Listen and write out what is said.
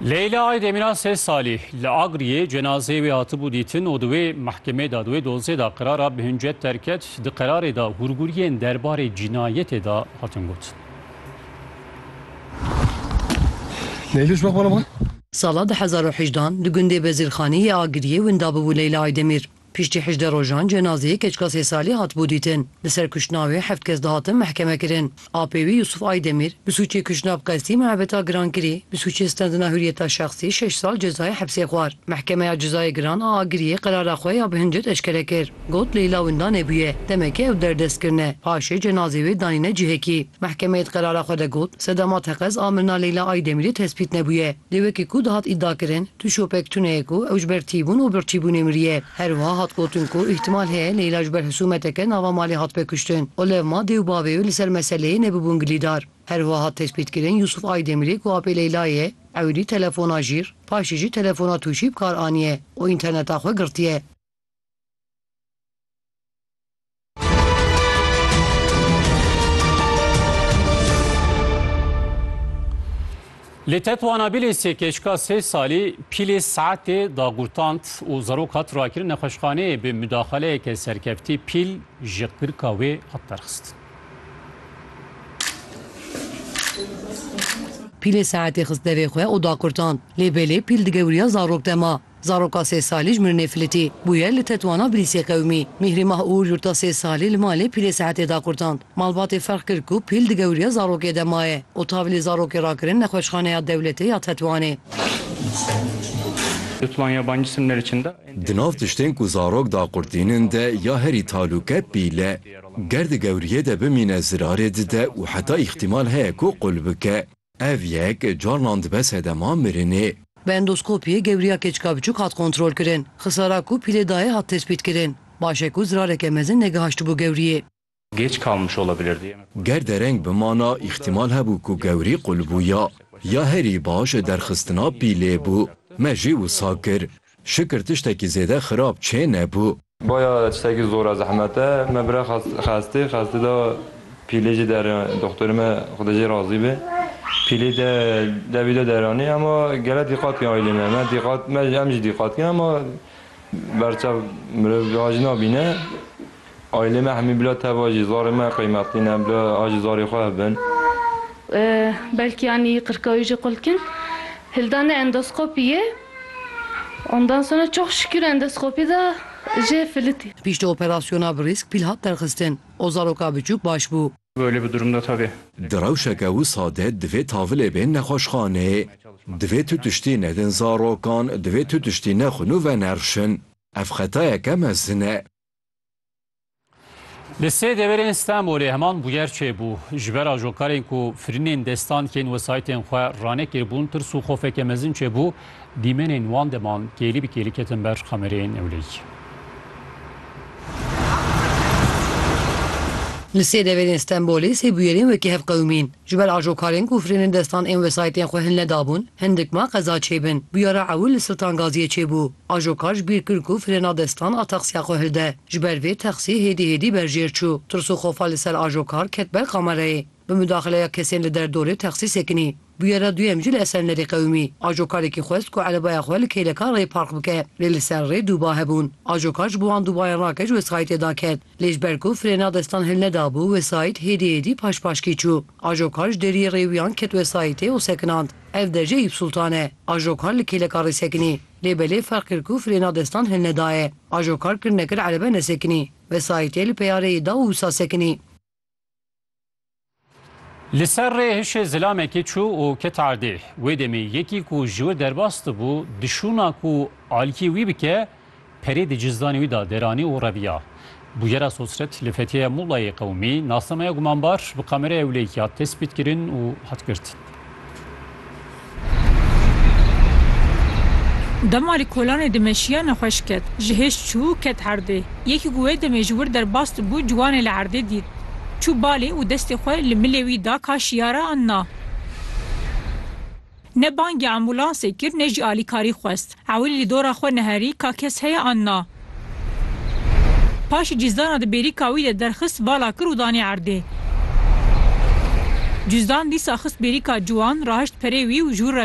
Leyla Aydemîra sê salî li Agriyê cenazeyê wê hatibû dîtin û di wê mehkemê de di wê dozê de qerara bi hincet derket. Di qerarê de hûrgûriyên derbarê cînayetê de hatin gotin. Leyluş bak bana bak. Sala du hezar û hejdan di gundê Bezîrxanî yê Agiriyê winda bûbû Leyla Aydemîr. Piştî hejdeh rojan cenazeyê keçika sê salî hatibû dîtin. Li ser kuştina wê heft kes dihatin mehkemekirin. Apê wî Yusuf Aydemîr bi sûcê kuştina bi qestî, muhebeta girankirî, bi sûcê standina huriyeta şexsî şeş sal cezayê hepsê xwar. Mehkemeya Cezayê Giran a Agiriyê qerara xwe ya bi hincet eşkere kir. Got Leyla winda nebûye. Demekê ew derdest kirine. Paşê cenazê wê danîne cihekî. Mehkemeyê di qerara xwe de got, Sedama teqez a mirina Leyla Aydemîrê tespît nebûye. Lê wekî ku dihat îdiakirin, Tu şopek tune ye ku ew ji ber tîbûn û birçîbûnê miriye. Herwiha hat gotin ku îhtimal heye Leyla ji ber hisûmeteke nava malê hatibê kuştin û levma dê û bavê wê li ser meseleyê nebibûn gilîdar. Herwiha hat tespîtkirin Yûsûf Aydemirê ku apê Leyla ye, ewilî telefona jîr, paşê jî telefona tûşî bi kar aniye û înterneta xwe girtiye. Li Tetwana Bilêsê keçika sê salî pîlê saetê dagurtand û zarok hat rakirin nexweşxaneyê bi mudaxeleyeke serkeftî pîl ji qirka wê hat derxistin. Pîlê saetê xist devê xwe û dagurtand lê belê pîl digewriya zarok dema. Zaroka sê salî ji mirinê filitî bûye li tetwana bilîsê qewimî. Mîhrî Mah Uğur Yurta sê salî li malê pîlê sehetê da qurtand. Malbatê ferq kir ku pîl di gewriya zarokê de maye û tavilê zarokê rakirin nexweşxaneya dewletê ya Tetwanê. Di nav tiştên ku zarok daqurtînin de ya herî talûk e pîl e. Ger di gewriyê de bimîne zirarê dide û heta îxtîmal heye ku qul bike. Ev yek carnan dibe sedema mirinê. Bi endoskopiyê gewriya keçika biçûk hat kontrolkirin. Xisara ku pîlê dayê hat tespîtkirin. Baş e ku zirareke mezin negihaştibû gewriyê. Ger dereng bimana îxtîmal hebû ku gewrî qulbûya. Ya herî baş derxistina pîlê bû. Me jî wisa kir. Şikir tiştekî zêde xirab çê nebû. Baya tiştekî zor e zehmet e. Me bira xestê xestê da pîlê jê dere doxtorê me xwedê jê razî be pîlê de dewî de deranê ema gele dîqat kî aîlê me me dîqat me em jî dîqat kîn ema berçav mirov a jî nabîne Aîlê me hemî bila teva jî zarê me qeymetlî ne, bila a ji zarê xwe hebin. Belkî anî qirkawî jî qul dikin. Hildanê endoskopî ye. Ondan sonra çok şükür endoskopî de jê filitî. Piştî operasyona bi rîsk pîl hat derxistin û zaroka biçûk baş bû. Böyle bir durumda tabii. Di rewşeke wisa de divê tavilê bên nexweşxaneyê. Divê tu tiştî nedin zarokan, divê tu tiştî nexwin û venerişin. Ev xetayeke mezin e. Li sê deverên Stenbolê heman bûyer çêbû. Ji ber ajokarên ku firînên destan kên wesaytên xwe ranekiribûn, tirs û xofeke mezin çêbû, dîmenên wan deman kêlî bi kêlî ketin ber kamereyên ewlehiyê. Li sê deverên Stenbolê sê bûyerên wekî hevqewimîn. Ji ber ajokarên ku firênên destan ên wesayîtên xwe hin nedabûn, hin dikma qeza çêbin. Bûyera ewil li Siltan Gaziyê çêbû. Ajokar ji bîr kir ku firêna destan a texsiya xwe hilde. Ji ber vê texsî hêdî hêdî ber jêr çû. Tirs û xofa li ser ajokar ket ber kamerayê. Bi mudaxileya kesên li derdorê texsî sekinî. Bûyera duyem jî li Esenlerê qewimî. Ajokarekî xwest ku erebaya xwe li kêleka rê park bike. Lê li ser rê dû ba hebûn. Ajokar ji bo wan dû bayên rake ji wesayîtê daket. Lê ji ber ku frêna destan hilnedabû, wesayît hêdî hêdî paş paşkî çû. Ajokar ji deriyê rêwiyan ket wesayîtê û sekinand. Ev dercê Eyûp Sultan e. Ajokar li kêleka rê sekinî. Lê belê ferq kir ku frêna destan hilnedaye. Ajokar kir nekir erebe nesekinî. Wesayîtê li peya rêyê da û wisa sekinî. Li ser rê hişê zilamekê çû û ket erdê. Wê demê yekî ku ji wir derbas dibû, dişûna ku alîkî wî bike, perê di cizdanê wî de deranî û reviya. Bûyera Sosret li Fethiyeya Mulayê Qewimî, nasnameya gumanbar bi kameraya ewleyî hat destpêtkirin û hat girtin. Dema li kolanê dimeşiya nexweş ket. Ji hêj çû û ket erdê. Yekî ku wê demê ji wir derbas dibû ciwanê li erdê dît. Çû balê û destê xwe li milê wî da ka şiyare an na. Ne bangê ambûlansê kir ne jî alîkarî xwest. Ewil li dora xwe neherî ka kes heye an na. Paşî cîzdana di bêrîka wî de derxist vala kir û danî erdê. Cîzdan dîsa xist bêrîka ciwan, rahişt perê wî û ji wir re